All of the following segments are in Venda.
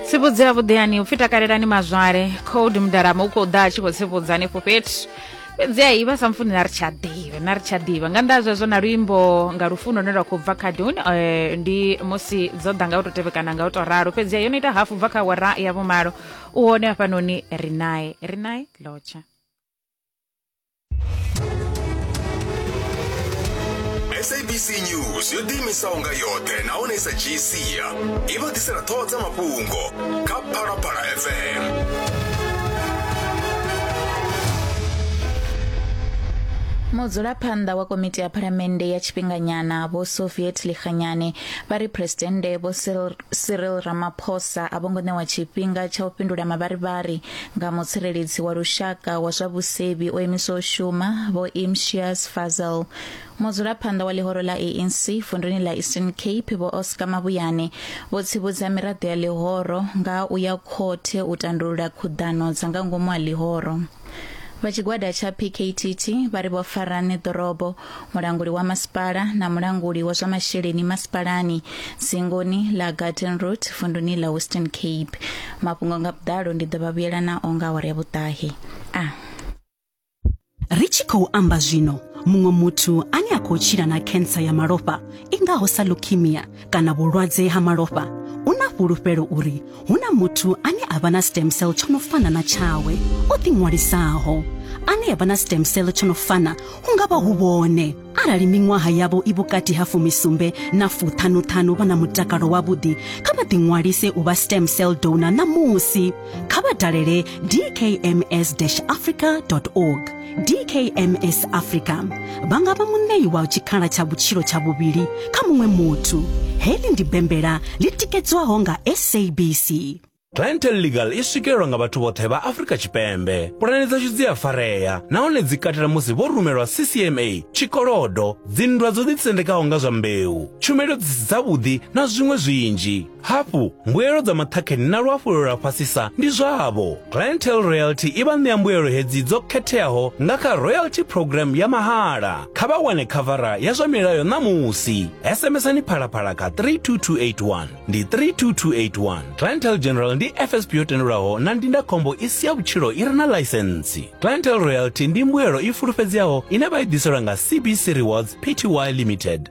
tsivhudzi ya vhuḓeani upfi takalelani mazwale code mudarama u khou ḓa a tshi khou tsivhudza hanefho fhethu fhedzi a ivha sa mfuni na ri tsha ḓivha na ri tsha ḓivha nga nnḓa zwezwo na luimbo nga lufuno lune lwa khou bva kha dun eh, ndi musi dzo ḓa nga u tou tevhekana nga u tou ralo fhedzi yo no ita hafu bva kha wara ya vhumalo u hone hafhanoni ri nae ri nae lotsha sabc news yo ḓiimisaho nga yoṱhe nahone i sa dzhii sia i vha ḓisela ṱhoho dza mafhungo kha phalaphala fm mudzulaphanḓa wa komiti ya phalamennde ya tshifhinganyana vho soviet lihanyane vha ri phuresidennde vho Cyril- cyril ramaphosa a vho ngo ṋewa tshifhinga tsha u fhindula mavharivhari nga mutsireledzi wa lushaka wa zwa vhusevhi o imiswa u shuma vho Imtiaz Fazel mudzulaphanḓa wa ḽihoro ḽa ANC vunḓuni ḽa Eastern Cape vho Oscar Mabuyane vho tsivhudza miraḓo ya ḽihoro nga u ya khothe u tandulula khuḓano dza nga ngomu ha ḽihoro vha tshigwada tsha PKTT vha ri vho Farane Dorobo mulanguli wa masipala na mulanguli wa zwa masheleni masipalani dzingoni ḽa gardenroot vunduni ḽa western cape mafhungo nga vhuḓalo ndi ḓo vha vhuyela nao nga awara ya vhuṱahe a ah. ri tshi khou amba zwino muṅwe muthu ane a khou tshila na khensa ya malofha i ngaho sa leukemia kana vhulwadze ha malofha u na fhulufhelo uri hu na muthu ane a vha na stem cell tsho no fana na tshawe o ḓiṅwalisaho ane ya vha na stem cell tsho no fana hu nga vha hu vhone arali miṅwaha yavho i vhukati ha fumisumbe na fuṱhanuṱhanu vha na mutakalo wavhuḓi kha vha ḓiṅwalise u vha stem cell donor ṋamusi kha vha dalele dkms-africa org dkms africa vha nga vha muṋei wa tshikhala tsha vhutshilo tsha vhuvhili kha muṅwe muthu heḽi ndi bembela ḽi tikedzwaho nga sabc Clientele Legal i swikelelwa nga vhathu vhoṱhe vha Afrika Tshipembe. Pulane dzashu dzi a farea nahone dzi katela musi vho rumelwa CCMA, tshikolodo, dzinndwa dzo ḓitsendekaho nga zwa mbeu, tshumelo dzi si dzavhuḓi na zwiṅwe zwinzhi. Hafhu, mbuelo dza maṱhakheni na luhafhulelo lwa fhasisa ndi zwavho. Clientele Royalty i vha ṋea mbuelo hedzi dzo khetheaho nga kha Royalty Programme ya mahala. Kha vha wane khavara ya zwa milayo ṋamusi. SMSani Phalaphala kha 32281. Ndi 32281. Clientele General ndi FSP yo tendelwaho na ndindakhombo i si ya vhutshilo i re na ḽaisentsi. Clientele Royalty ndi mbuelo i fulufhedzeaho ine vha i ḓiselwa nga CBC Rewards Pty Limited.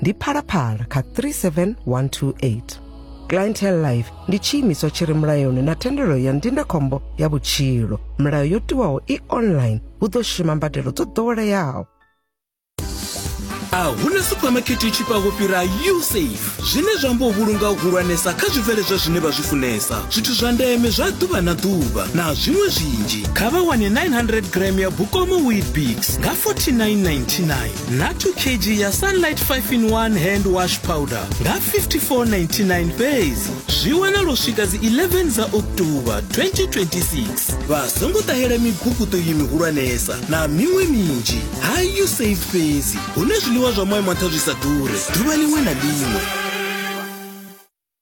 ndi phalaphala kha 37128 clientele life ndi tshiimiswa tshi re mulayoni na thendelo ya ndindakhombo ya vhutshilo milayo yo tiwaho i online hu ḓo shuma mbadelo dzo ḓoweleaho a hu na suphamakete i tshifhaho fhira usafe zwine zwa amba u vhulunga u hulwanesa kha zwibveledzwa zwine vha zwi funesa zwithu zwa ndeme zwa ḓuvha na ḓuvha na zwiṅwe zwinzhi kha vha wane 900 gram ya bukomo wheat bix nga 4999 na 2 kg ya sunlight 5 in 1 hand wash powder nga 5499 fhedzi zwi wanala u swika dzi 11 dza october 2026 vha songo ṱahela miguguṱo iyi mihulwanesa na miṅwe minzhi ha you save fhedzi hune zwiḽiwa zwa moyo maṱha zwi sa ḓure ḓuvha ḽiṅwe na ḽiṅwe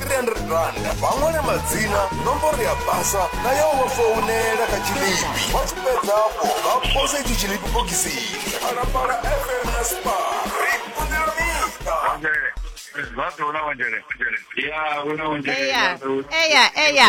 300 randa vha ṅwale madzina nomboro ya basa na ya u vha founela kha tshilipi vha tshi fhedzapo vha pose itshi tshilipi bokisini phalaphala fm na spa ri kunela miṱa Eya, eya, eya.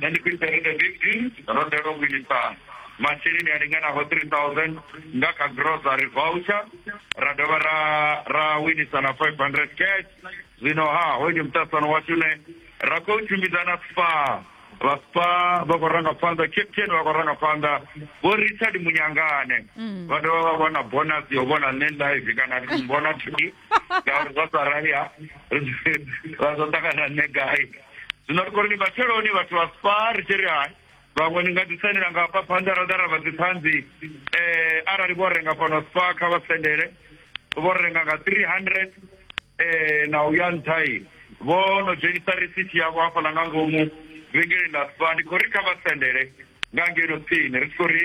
na ndi khou isa radio fifteen ro ḓelwa vhuisa masheleni a linganaho three thousand nga kha grocery voucher ra dovha ra ra winisa na five hundred cash zwino ha hoyu ndi muṱasano washu ne ra khou tshimbidza na spa vha spa vha khou ranga phanḓa captain vha khou ranga phanḓa vho richard munyangane vha dovha vha vhona bonus yo vhona nṋe live kana vhona tv ngauri zwa sa rali ha ra zwa ṱangana nṋe gai zwino ri khou ri ni matsheloni vhathu vha spa ri tshi ri hai vhaṅwe ni nga ḓi sendela nga hafha phanḓa ra ḓa ra vha dziṱhanzi um arali vho renga fhano spa kha vha sendele vho renga nga three hundred um na u ya nṱhai vho no dzhenisa risithi yavho hafhaḽa nga ngomu vhengeleni ḽa spa ndi khou ri kha vha sendele nga ngeno tsini ri tshi khou ri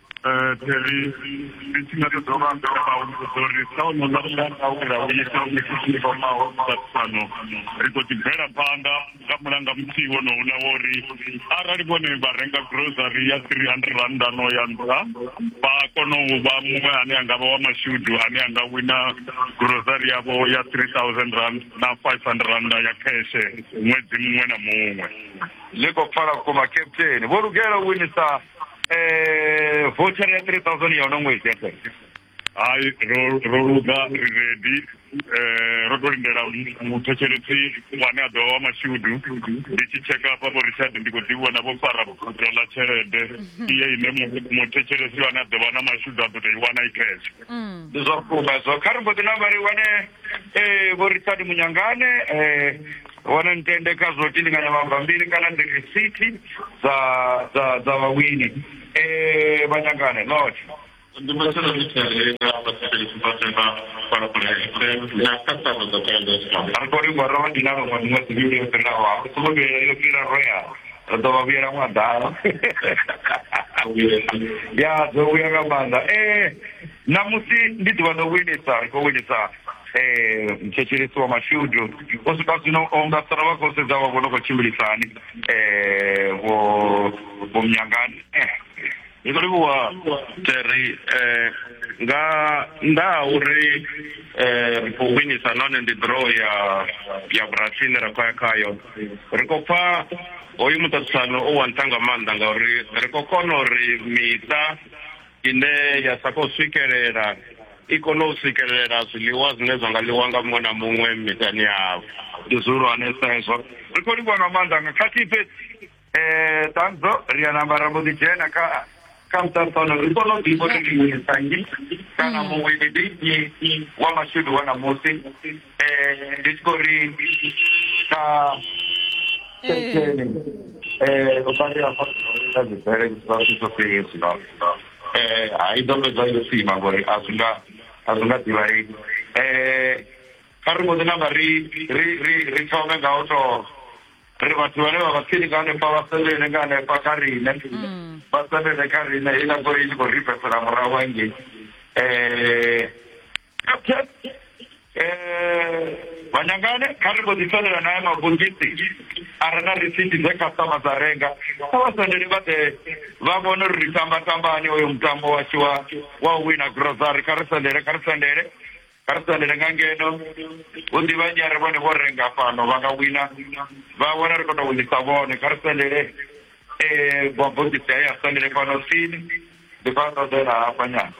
Theli ndi tshi nga ṱoḓa uvha amba vha humbudza uri sa ono ḽa mulanga we ra u ita mishini fhamaho vhaṱano ri khou ḓi bvela phanḓa nga mulanga muthihi wonouḽa wo ri arali vhone vha renga grocery ya 300 rannda no ya nṱha vha kona u vha muṅwe ane a nga vha wa mashudu ane a nga wina grocery yavho ya 3000 rand na 500 rannda ya kheshe ṅwedzi muṅwe na muṅwe zwi khou pfala vhukuma captain vho lugela u winisa eh voucher ya 3000 ya uno ṅwedzi ya fhedzi hayi ro ro luga ri ready eh ro to lindela muthetshelesi wane a ḓo wa mashudu ndi tshi tsheka hafha vho richard ndi khou ḓi vhona vho fara buto ḽa tshelede iye ine mu- muthetshelesi wane a ḓo vha na mashudu a ḓo tou i wana i cash ndi zwa vhukuma zwo kha ri mbo ḓi namba ri wane eh vho richard munyangane eh hone ntende kha zwo tindinganya mabambiri kana ndi risithi dza dza dza vhawini um vha nyangane not ndi masana mitshalela vhasatelisipatela na khasano dza kaendesa ri khou livhuwa ro vha dinalo nga miṅwedzi mivhili yo fhiraho a ri songo vhuyela yo fhira roya ri ḓo vha vhuyela ṅwa ḓala ya dzo vhuya nga maanḓa um ṋamusi ndi ḓuvha ḽo winisa ri khou winisa um thetshelesiwa mashudu u swika zwino o nga sara vha khou sedza vha vhono khou tshimbilisa hani um vho vho mnyangani ndi khou livhuwa terry um nga nnḓa ha uri um ri khou winisa nahone ndi draw ya ya vhurathi ine ra khou ya khayo ri khou pfa hoyu muṱaṱisano u wa nṱha nga maanḓa ngauri ri khou kona uri miṱa ine ya sa khou swikelela i kone u swikelela zwiḽiwa zwine zwa nga ḽiwa nga muṅwe na muṅwe miṱani yavho ndi zwihulwanesa hezwo ri khou livhuwa nga maanḓa nga khathihi fhedzi um ṱanzo ri ya namba ra mbo ḓi dzhena kha kha muṱaṱano ri kone u ḓivha uri ndi nyi kana muṅwe ndi nnyi wa mashudu wa ṋamusi eh ndi tshi khou ri kha senteni eh u badela kha kha dzibere zwa zwi ḓo fhela zwino eh a i ḓo fhedza yo sima ngori a zwi nga a zwi nga ḓivhalei eh kha ri mbo ḓi namba ri ri ri ri thome nga u to ri vhathu vhane vha vha tsini nga hanefha vha sendele nga hanefha kha riṋe vha sendele kha riṋe heiḽa goloi i tshi khou ri bvesela murahu hangei eh Captain, eh, vhanyangane kha ri mbo ḓi sendela naye mavhungisi a re na risiti dze khasitama dza renga kha vha sendele vha ḓe vha vhone uri ri tamba tambani oyo mutambo washu wa wa u wina grocery kha ri sendele kha ri sendele kha ri sendele nga ngeno hu ḓi vhanyare vhone vho renga fhano vha nga wina vha vhona ri khou tou winisa vhone kha ri sendele eh vhagudisi haya sendele fhano tsini Ndi khou a ṱoḓela hafha nyana,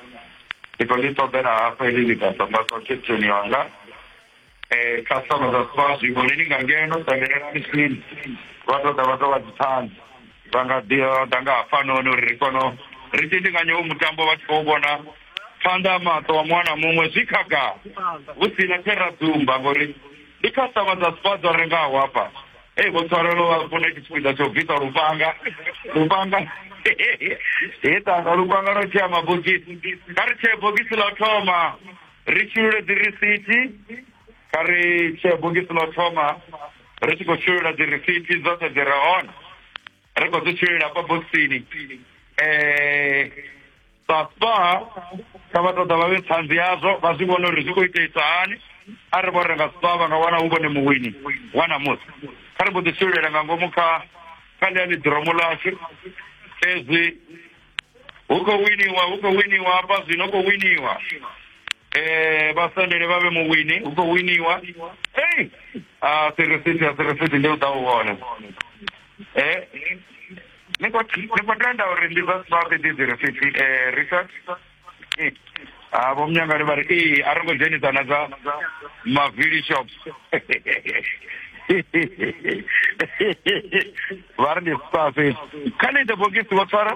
ndi khou ḽi ṱoḓela hafha heḽi ḽigaḓa nda ṱwa khetheni yanga. Customer dza sokou a zwi vhoni ni nga ngeno ṱangelelani tsini, vha tou ḓa vha tou vha dzi ṱhanzi. Vha nga ḓi vha ḓa nga hafhanoni uri ri kone ri tshindinganye hoyu mutambo vha tshi khou vhona phanḓa ha maṱo a muṅwe na muṅwe zwi khagala, hu si na tshe ra dzumba ngori ndi customer dza Spar dzo rengaho hafha. Ee, Vho Tswarelo vha funa tshipiḓa tsha u bvisa lufhanga. Lufhanga. He ṱanga lufhanga lwa tshea mabogisi. Kha ri tshee bogisi ḽa u thoma. Ri shulule dzi risithi. Kha ri tshee bogisi ḽa u thoma. Ri tshi khou shulula dzi risithi dzoṱhe dzi re hone. Ri khou dzi shululela hafha bokisini. Eh. papa kha vha ṱoḓa vha vhe ṱhanzi yazwo vha zwi vhone uri zwi khou iteisa hani a ri vho renga spa vha nga wana hu vhone muwini wa namusi kha ri mbo ḓi swilela nga ngomu kha kha ḽia ḽiḓiromo ḽashu fhedzi hu khou winiwa hu khou winiwa hafha zwino khou winiwa eh vha sendele vha vhe muwini hu khou winiwa ei a sirisithi a sirisithi ndi u ḓa u vhona eh ni khou ni khou tenda uri ndi zwa zwavhuḓi ndi dzi risithi eh richard ha vho munyangani vha ri ee a ri ngo dzhenisa na dza mavili shop vha ri ndi spa fhedzi kha ni ite bogisi vho tshwara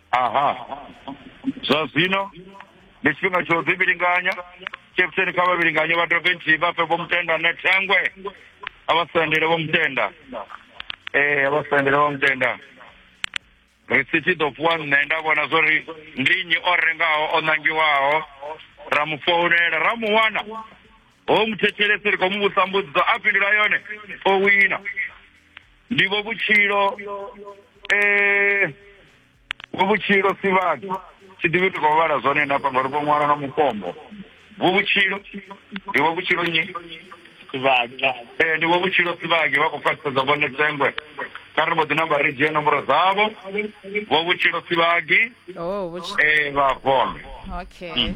Aha. Zwa zwino ndi tshifhinga tsha u ḓivhilinganya. Captain kha vha vhilinganye vha dovhe nthihi vha fhe vho mutenda ne thengwe. A vha sendele vho mutenda. Eh, a vha sendele vho mutenda. Risithi ḓo fhiwa nṋe nda vhona zwori ndi nnyi o rengaho o nangiwaho ra mu founela ra mu wana ho muthetshelesi ri khou mu vhusa mbudziso a fhindula yone o wina ndivho vhutshilo eh vho vhutshilo si vhathu tshi ḓivhi ndi khou vhala zwone na panga ri khou ṅwala na mukombo vho vhutshilo ndi vho vhutshilo nyi sivhaki eh ndi vho vhutshilo sivhaki vha khou khwaṱhisedza vhone tsengwe kha ri mbo ḓi namba ri dzhie nomboro dzavho vho vhutshilo sivhaki oh vhutshilo eh vha vhone okay mm.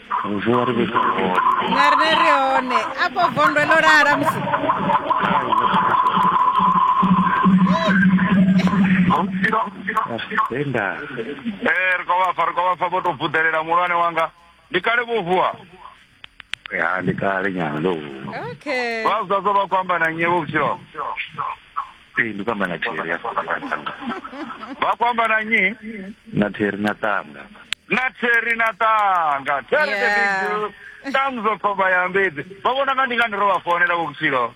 Bonjour, ri vhidza hone. Na rine ri hone. Afho vondwe ḽo lala musi. Tenda. Eh, ri khou vha pfa, ri khou vha pfa vho tou vuḓelela muhulwane wanga. Ndi kale vho vuwa. Ya, ndi kale nyana ndo vuwa. Okay. Vha zwa zwo vha khou amba na nnyi vho vhutshilo. ee ndi kwamba na theri ya tanga vha kwamba na nyi na theri na tanga na theri na tanga theri the big deal tanzo khomba ya mbedzi vha vhona nga ndi nga ndi ro vha founela vhukutshilo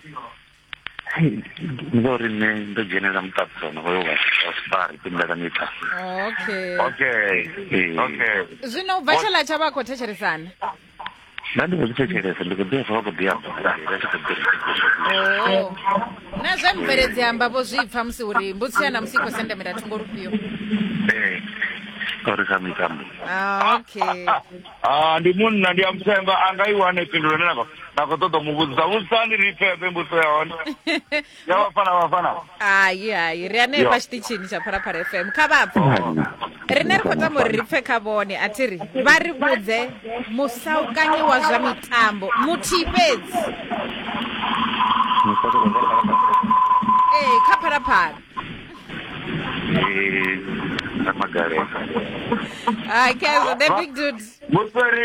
ngori nṋe ndo dzhenela muṱaṱisano hoyo wa safari timela miṱa okay okay okay zwino u bva tshala tsha vha khou thetshelesana nṋe ndi khou zwi thetshelesa ndi khou ḓi pfa vha khou ḓi amba vha tshi khou ḓi oo na zwe mubveledzi amba vho zwi pfa musi uri mbutsi ya namusi i khou sendamela thungo lufhio ee uri sa mitambo Ah, okay Ah, ndi munna ndi a muthemba a nga i wane phindulo ine na khou- na khou ṱoḓa u mu vhudzisa vhudzisani ri pfefe mbudziso ya hone ya vafana vafana hai hai ri anei Yo. pa tshiṱitshini tsha phalaphala fm kha vhapfe rine ri khou tama uri ri pfe kha vhone a thi ri vha ri vhudze musaukanyi wa zwa mitambo muthihi fhedzi ee kha phalaphala Magalesa. okay so the big dude Vhutsweri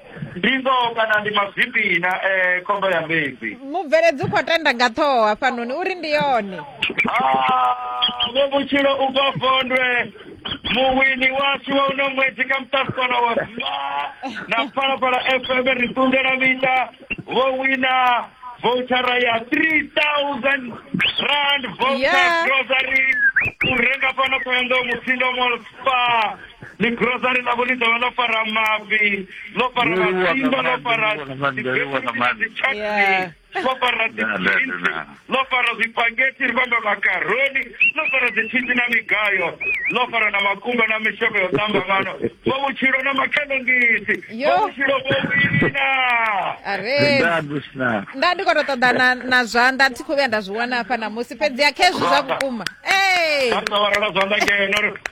ndi ngoho kana ndi mazwifhi na eh, khombo ya mbedzi mubveledzi u khou tenda nga ṱhoho hafhanoni uri ndi yone Ah, vho vhutshilo u bva vondwe muwini washu wa uno ṅwedzi kha muṱasikona wa zwa na phalaphala fm ri ṱundela miṱa vho wina vouchara ya 3000 rand voucher Yeah. grocery u renga fhano ṱhoyandou mutsindo mall spa ni grocery ḽavho ḽi dovha ḽo fara mafhi ḽo fara masimba ḽo fara dzichutney ḽo fara dziinsi ḽo fara zwipageti ri vhamba makaroni ḽo fara dzithiti na migayo ḽo fara na makumba na mishonga yo tamba ngano vho vhutshilo na makhenongisi vho vhutshilo vho wina nda ndi khou tou ṱoḓa na zwanḓa thi khou vhuya nda zwi wana hafha na musi fhedzi a khezwi zwa vhukuma ee zwanḓa ngeno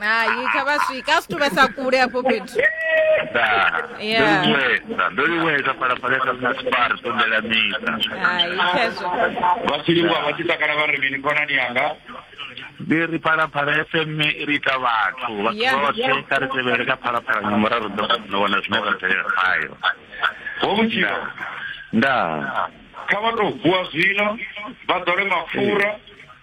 hai kha vha swika a si tuvhesa kule afho fhethu Yeah. ndoliwesa ndoliwesa phalaphalesa mna sipari sondela mita hai khezwo vhasilingo vha tshi takala vha ri mini khonani yanga ndi ri phalaphala fm i ri ita vhathu vhathu Yeah. vhoṱhe kha ri tevhele kha phalaphala nga muraru ḓo no wana zwine ra tevhela khayo ho vhutshilo nda kha vha tou vuwa zwino vha ḓole mapfura